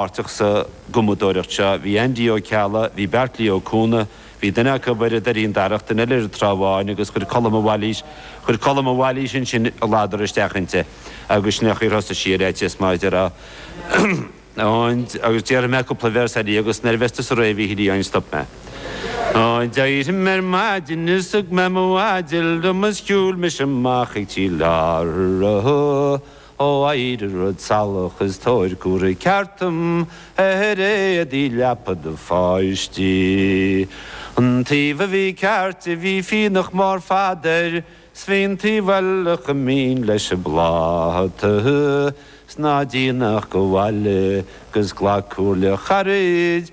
páirteach sa gcumadóireacht seo bhí Aindí Ó Ceallaigh, bhí Beairtlí Ó Cuanaigh, bhí duine acu ar an Doirín Darach, duine eile ar an Trá Bháin agus chuir Colm de Bhailís, chuir Colm de Bhailís ansin a ladar isteach inti agus sin é an chaoi ar thosaigh sí ar fhaitíos má deir a an agus déarfaidh mé cúpla véarsa eile agus nuair a bheas tusa réidh a Mhíchíl Uí Eidhin stop mé. Ó d'éirigh mé ar maidin is thug mé mo mhaide liom is shiúil mise amach ag Tír Láirge. ó éirigh rud salach is tabhair cuireadh ceart dom ar éadaí leapa do pháistí an taobh a bhí ceart a bhí fionnach mór fada air 's bhí an taobh eile chomh mín leis an bpláta 's ná déan ach gabh abhaile 'gus glac comhairle charaid